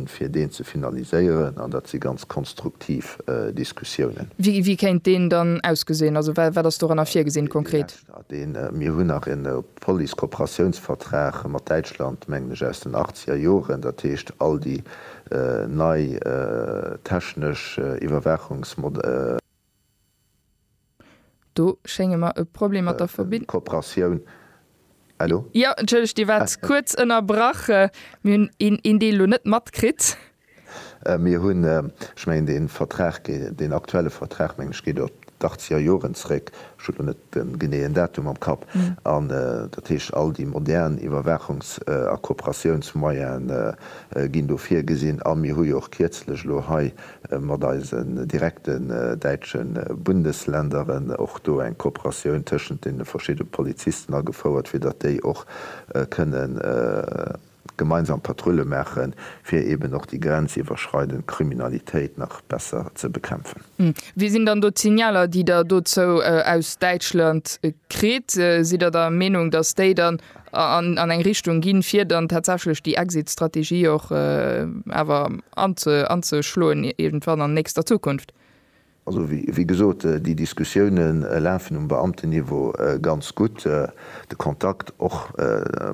fir deen ze finaliséieren, an dat si ganz konstruktiv Diskussiounen. Wéi kéint deen dann ausgesinn? Also wat ass doranner virgesinn konkret? Mir hunn nach en Police-Kooperatiounsvertrag mat Däitschland, mengen ech, aus den achtzeger Joren. Dat heescht, all déi nei technesch Iwwerwaachungsmodalitéiten, Do schénge mer e Problem mat der Verbindung. Kooperatioun. Elo? Jo, entschëllegt, Dir waart kuerz ënnerbrach. Mir hunn een Deel elo net matkritt. Mir hunn, ech mengen, dee Vertrag, deen aktuelle Vertrag, mengen ech, geet op d'Achtzeger Joren zréck, ech hu elo net de geneeën Datum am Kapp, an dat heescht, all déi modern Iwwerwaachungs a Kooperatiounsmoyene ginn do virgesinn. A mir hu jo och kierzlech elo hei mat eisen direkten däitsche Bundesländeren och do eng Kooperatioun tëschent deene verschidde Polizisten agefouert, fir datt déi och kënne gemeinsam Patrulle maache fir eeben och déi grenziwwerschreidend Kriminalitéit nach besser ze bekämpfen. Wéi sinn dann do d'Signaler, déi Der dozou aus Däitschland kritt? Sidd Der der Meenung, datt déi dann an eng Richtung ginn, fir dann tatsächlech déi Exit-Strategie och awer anzeschloen iergendwann an nächster Zukunft. Also, wéi gesot, déi Diskussioune lafen um Beamtenniveau ganz gutt. De Kontakt och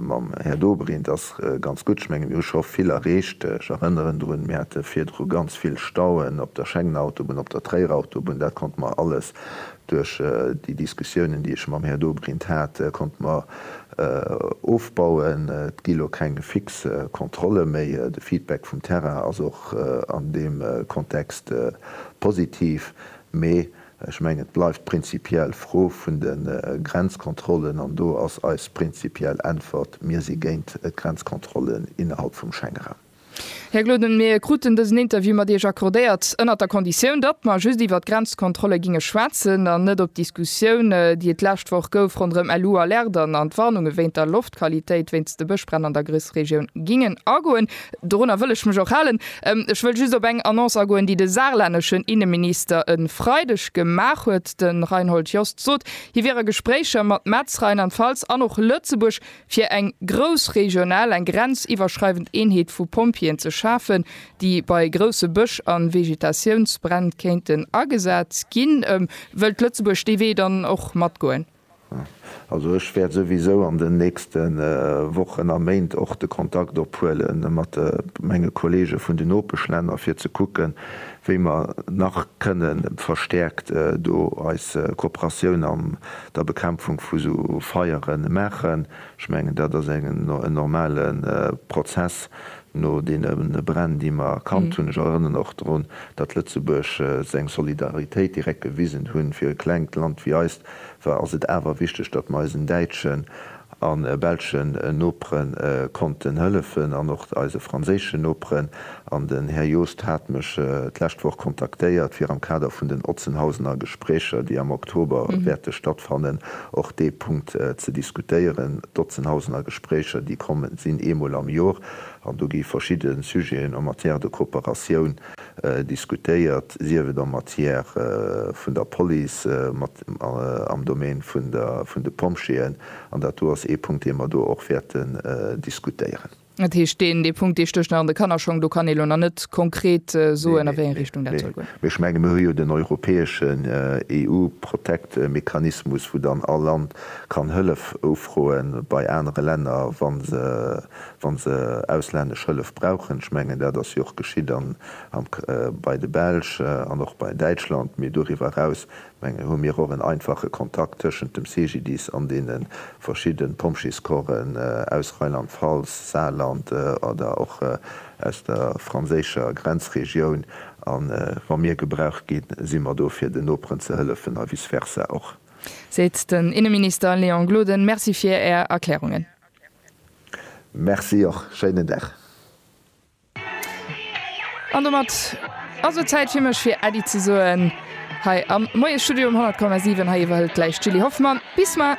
mam Här Dobrindt ass ganz gutt. Ech mengen, mir hu scho vill erreecht. Ech erënneren drun, mir hate virdru ganz vill Stauen op der Schengen-Autobunn, op der Tréier-Autobunn. Dat konnte mer alles Duerch déi Diskussiounen, déi ech mam Här Dobrindt hat, konnte mer ofbauen. Et gi lo keng fix Kontrolle méi. De Feedback vum Terrain ass och an deem Kontext positiv. Mee ech mengen, et bleift prinzipiell d'Fro vun de Grenzkontrollen. An do ass eis prinzipiell Äntwert, Mir si géint Grenzkontrollen innerhalb vum Schengenraum. Här Gloden, mir kruten dësen Interview mat Iech accordéiert ënnert der Konditioun, datt mer just iwwert d'Grenzkontrolle ginge schwätzen an net op d'Diskussioun, déi et d'lescht Woch gouf ronderëm LU-Alerten an d'Warnunge wéint der Loftqualitéit wéinst de Bëschbränn an der Grëssregioun, gingen agoen. Dorunner wëll ech mech och halen. Ech wëll just op eng Annonce agoen, déi de saarlänneschen Inneminister e Freideg gemaach huet. De Reinhold Jost sot, hie wier a Gespréicher mat Metz, Rheinland-Pfalz an och Lëtzebuerg, fir eng grouss regional, eng grenziwwerschreiwend Eenheet vu Pompjeeën ze schafen, déi bei grousse Bësch a Vegetatiounsbränn kéinten agesat ginn. Wëllt Lëtzebuerg dee Wee dann och matgoen? Also ech wäert souwisou an den nächste Wochen a Méint och de Kontakt ophuele mat menge Kollege vun den Nopeschlänner, fir ze kucken, wéi mer nach kënne verstäerkt do eis Kooperatioun am der Bekämpfung vu sou Feiere maachen. Ech mengen, dat ass en normale Prozess no deene Bränn, déi mer kannt hunn. Ech erënnern och drun, datt Lëtzebuerg seng Solidaritéit direkt gewisen hunn. Fir e klengt Land wéi eist ass et awer wichteg, datt mer eisen däitschen a belschen Nopere konnten hëllefen an och eise franséischen Noperen. An den Här Joost hat mech d'lescht Woch kontaktéiert, fir am Kader vun den Otzenhausener Gespréicher, déi am Oktober wäerte stattfannen, och dee Punkt ze diskutéieren. D'Otzenhausener Gespréicher, déi kommen, sinn eemol am Jor an do gi verschidde Sujeten en matière de coopératioun diskutéiert, sief et en matière vun der Police, am Domaine vun de Pompjeeën, an dat do ass ee Punkt, dee mer do och wäerten diskutéieren. Dat heescht, deen Punkt, dee stécht nach an de Kannerschong, do kann ee elo nach net konkret soen, a wéi eng Richtung dat soll goen. Mee ech menge mir hu jo den europäeschen EU-Protect-Mechanismus, wou dann all Land kann Hëllef ufroe bei anere Länner, wa se, wa se auslännesch Hëllef brauchen. Ech mengen, dat ass jo och geschitt bei de Belsch an och bei Däitschland. Mee doriwwer eraus, mengen ech, hu mir och en einfache Kontakt tëschent dem CGDIS an deene verschidde Pompjeescorpsen aus Rheinland-Pfalz, Saarland oder och aus der franséischer Grenzregioun. A wa mir gebraucht ginn, si mer do, fir den Noperen ze hëllefen a vice versa och. Seet den Inneminister Léon Gloden. Merci fir Är Erklärungen. Merci och. Schéinen Dag. An domat ass et Zäit fir mech fir Äddi ze soen hei am Moiesstudio um 100,7. Hei iwwerhëlt gläich d'Julie Hoffmann. Bis mar.